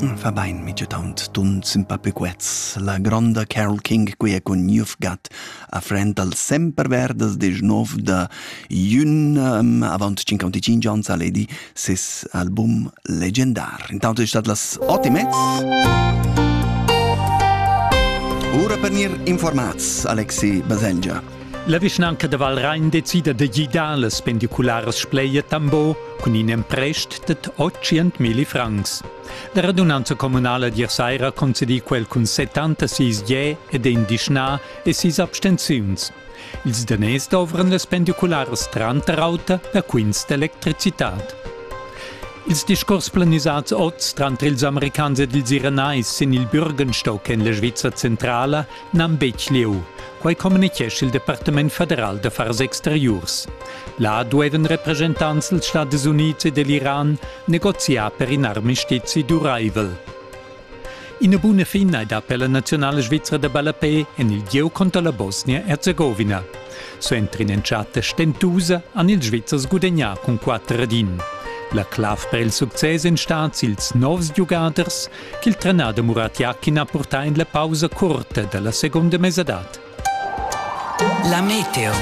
Ün fa bain mitgetaunt tunt simpapequets. La gronda Carol King quia cun You've Got a frend al semper verdas desch nov da Jün um, avant 55 ans a ledi ses album legendar. Intant è stat las ot e mezz. Ora per nir informats, Alexi Baselgia. La vischnanca da Valrain decida da gidar las pendicularas Spleia Tambo cun in emprest dad 800.000 francs. La radunanza communala d'ier saira ha concedì quel cun 76 je ed in dischnà e sis abstenziuns. Ils daners dovran las pendicularas tranter auter da quints d'electricitad. Ils discurs planisats oz tranter ils americans ed ils iranais sin il Bürgenstock en la Svizzera centrala N'han betg lieu. Quai communitgescha il Departament federal d'affars exteriurs. Là duevan representants dals Stadis Unids e dell'Iran negoziar per in armistizi duraivel. Ina buna fin hai dà per la nazionala svizra da ballapé en il gieu conter la Bosnia-Herzegovina. So entrin entschatta stentusa han ils Svizzers gudagnà cun 4 ad 1. La clav per il success en stat ils novs giugaders ch'il trenader Muratiak ha purtà en la pausa curta da la segunda mesadad. La meteo.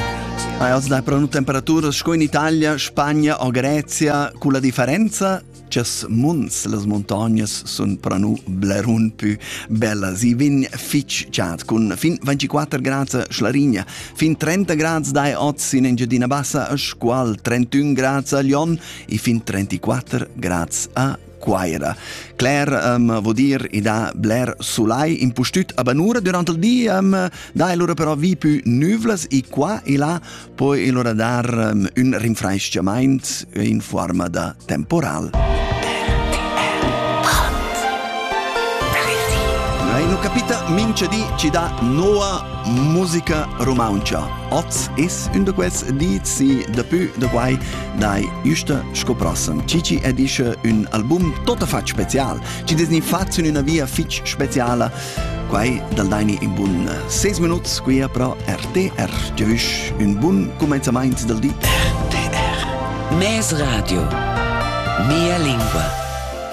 Als dà però temperaturas sco in Italia, Spagna o Grezia, cu la differenza Chas munds las montagnas sun pranu blerun pü bellas. I vin fich chat cun fin 24 grads a Schlarigna, fin 30 grads dai oz in Engiadina Bassa a Scual, 31 grads a Lyon e fin 34 grads a Quaira. Claire um, vo dir i dà bler sulai impustüt a Banura durant il di, um, da e lura però vi più nüvlas e qua e là poi e lura dar um, un rinfraischiamaint in forma da temporal. Non capita mince di ci dà noa musica romancia. Oz is un de quels dizi de più de quai Dai üsta sco prossem. Cici e dische ün album totta fatg special. Ci desni facin üna via fitch speciala. Quai dal daini in bun 6 minuts qui a pro RTR. Tschüss, un bun comenzamaint del di. RTR. Mes radio. Mia lingua.